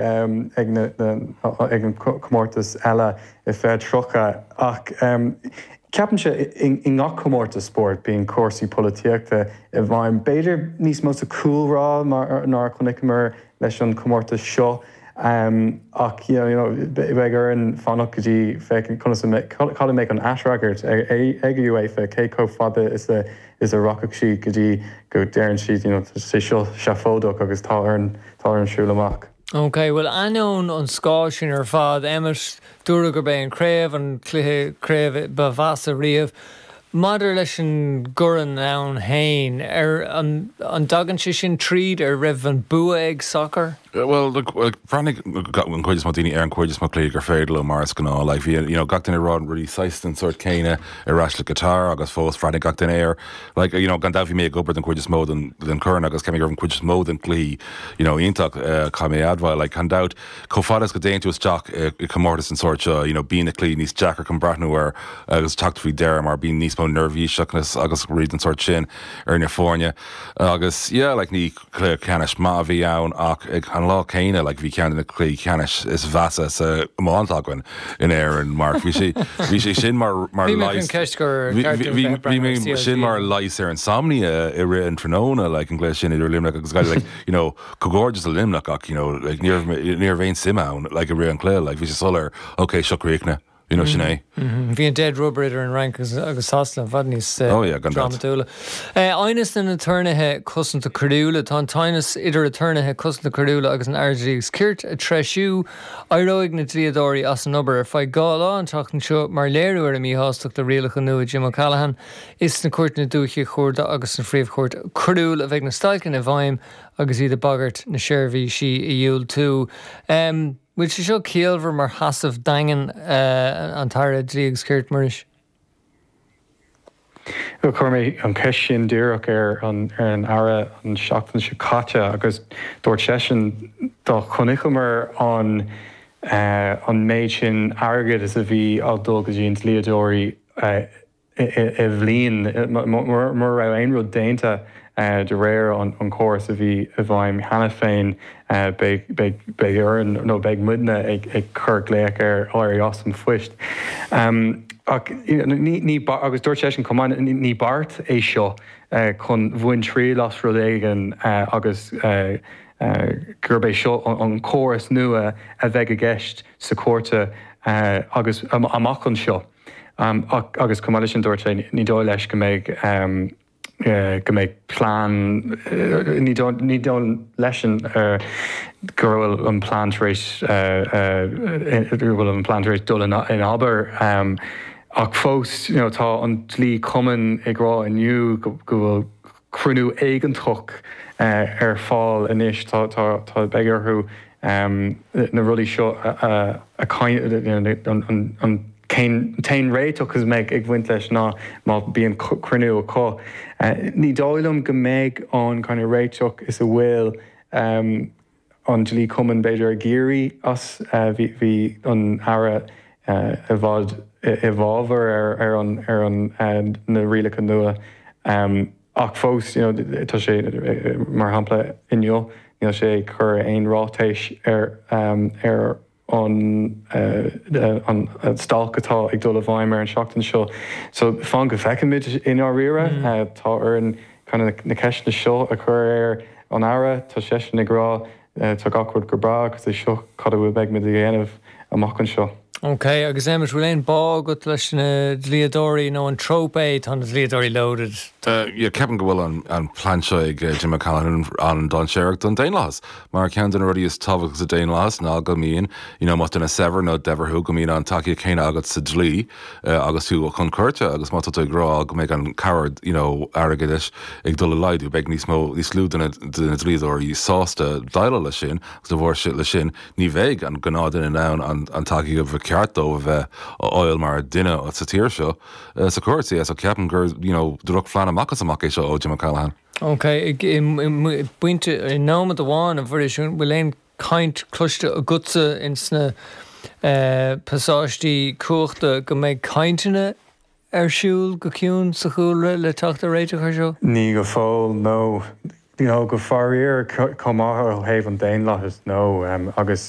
ag an comórtas eile i fiche tríocha ach ceapann sé i ngach comórtas spóirt bíonn cúrsaí polaitíochta i bhfeidhm, b'fhéidir níos mó sa chúlrá ná mar a chonaiceamar leis an chomórtas seo ach you know beidh orainn fanacht go dtí féachaint conas a cad a mbeidh an aisfhreagairt ag an UEFA cé chomh fada is a is a rachadh sí go dtí go deireann siad you know sé seo seafóideach agus tá orainn, tá orainn siúl amach. Ok, bhuel ainneoin an scáil sin ar fad, Emmet, dúradh gurb é an Chraobh an cluiche craobh ba mheasa riamh. Maidir leis an gCorn féin, ar, an, an dtagann sé sin tríd, an raibh an bua ag sacar? Bhuel, look, bhreathnaigh an chuid is mó daoine ar an chuid is mó cluichí gur féidir leo mar is gnáth, like bhí an, you know gach duine ag rá rudaí saghas den sórt céanna. ar ais le Qatar agus fós bhreathnaigh gach duine air. Like, you know, gan dabht bhí mé ag obair don chuid is mó den den Chorn agus ceapaim go raibh an chuid is mó den cluichí, you know, iontach, eh, caithfidh mé a admháil, like, gan dabht, chomh fada is go dtéann tú isteach i i comórtas den sórt seo, you know, bíonn na cluichí níos deacra chun breathnú air agus teacht faoi deireadh mar bíonn níos mó neirbhíseachnas agus rudaí den sórt sin ar na foirne agus, yeah, like, ní Cluiche ceannais maith a bhí ann ach ag an lá céanna, like, bhí ceann de na cluichí ceannais is mheasa san iománaíocht againn in Éirinn mar bhí sé, bhí sé sin mar, mar Bhí mé leigheas, faoin cheist gur bhí, ceart bhí, bhí, bhí mé breathnú ar sin CLG. mar leigheas ar insomnia i rith an tráthnóna, like, an gcluiche sin idir Luimneach agus Gaillimh, like, you know, comhghairdeas do Luimneach ach, you know, like, ní raibh, ní raibh aon suim ann, like, i rith an chluiche, like, bhí sé soiléir, ok, seo críochnaithe. You know, sin é. Bhí an dead rubber idir an Fhrainc agus- agus Sasana i bhfad níos, eh, Oh, yeah, gan dabht. drámatúla. Eh, aighneas na n-aturnaetha cosanta coiriúla. Tá an t-aighneas idir aturnaetha cosanta coiriúla agus an Aire Dlí agus Cirt ag treisiú. Éireoidh na dlíodóirí as an obair ar feadh dhá lá an tseachtain seo, mar léiriú ar a míshástacht le rialacha nua Jim O'Callaghan. Is sna cúirteanna dúichí chuarda agus sna phríomhchúirt coiriúil a bheidh na stailceanna i bhfeidhm agus iad ag bagairt na seirbhísí a dhiúltú. Em. Bhfuil sé seo ciallmhar mar sheasamh daingean? An tAire Dlí agus Cirt, Muiris. Bhuel, chuir mé an cheist sin díreach ar an Aire an seachtain seo caite agus dúirt seisean, dá chonaiceamar an méid sin airgid is a bhí ag dul go dtí na dlíodóirí, i bhliain, mura raibh aon rud déanta de réir an chórais a bhí i bhfeidhm cheana féin. Beidh orainn, nó beidh muidne, ag cur glaoch air éirí as an phoist. Ach ní, agus dúirt seisean chomh maith, ní beart é seo chun baint triail as rud éigin agus gurb é seo an córas nua a bheidh i gceist sa chúirt dúiche agus amach anseo. Ach, agus chomh maith le sin, dúirt sé, ní dóigh leis go mbeidh, go mbeidh plean, ní dóigh, ní dóigh leis-sean go bhfuil an plean tar éis, go bhfuil an plean tar éis dul in abar. Ach fós, you know, tá an Dlí-Chumann ag rá inniu go bhfuil, cruinniú éigeandála ar fáil anois. Beidh orthu na rudaí seo, an t-aon réiteach a bheidh ag bhaint leis ná má bíonn cruinniú acu. Ní dóigh liom go mbeidh aon chineál réiteach is a bhfuil. an Dlí-Chumann, b'fhéidir, ag iarraidh as. Bhí an tAire i bhfad i bhfábhar ar na rialacha nua ach fós, tá sé, mar shampla inniu, níl sé ag cur aon ráiteas ar. an an stailc atá ag dul i bhfeidhm ar an tseachtain seo. So fan go bhfeicfimid i ndáiríre. Tá orainn kind of na ceisteanna seo a chur ar an Aire. Tá seisean ag rá tá gach rud go breá agus is é seo cad a bheidh muid a dhéanamh amach anseo. OK agus Emmet bhfuil aon bá agat leis na dlíodóirí nó an trope é tá na dlíodóirí loaded? Ceapaim go bhfuil an plean seo ag Jim O'Callaghan an-dainséarach don daonlathas. Mar ceann de na rudaí is tábhachtaí sa daonlathas ná go mbíonn, you know más duine saibhir nó daibhir thú, go mbíonn an tacaíocht chéanna agat sa dlí agus tú chun cúirte agus má tá tú ag rá go mbeidh an cabhair, you know airgeadais ag dul i laghdú, beidh níos mó, níos lú de na dlíodóirí sásta déileáil leis sin agus de bharr sin ní bheidh an gnáthdhuine in ann an an tacaíocht ba cheart dóibh a bheith a fháil mar dhuine sa tír seo, sa chúirt. So ceapaim gur, you know drochphlean amach is amach é seo ó Jim O'Callaghan. Ok, i bpointe, i nóiméad amháin, a Mhuiris, an bhfuil aon chaint cloiste agatsa in sna pasáistí cumhachta go mbeidh cainteanna ar siúl go ciúin sa chúlra le teacht ar réiteach air seo? Ní go fóill, nó faraor, chomh maith ó thaobh an daonlathais, nó agus.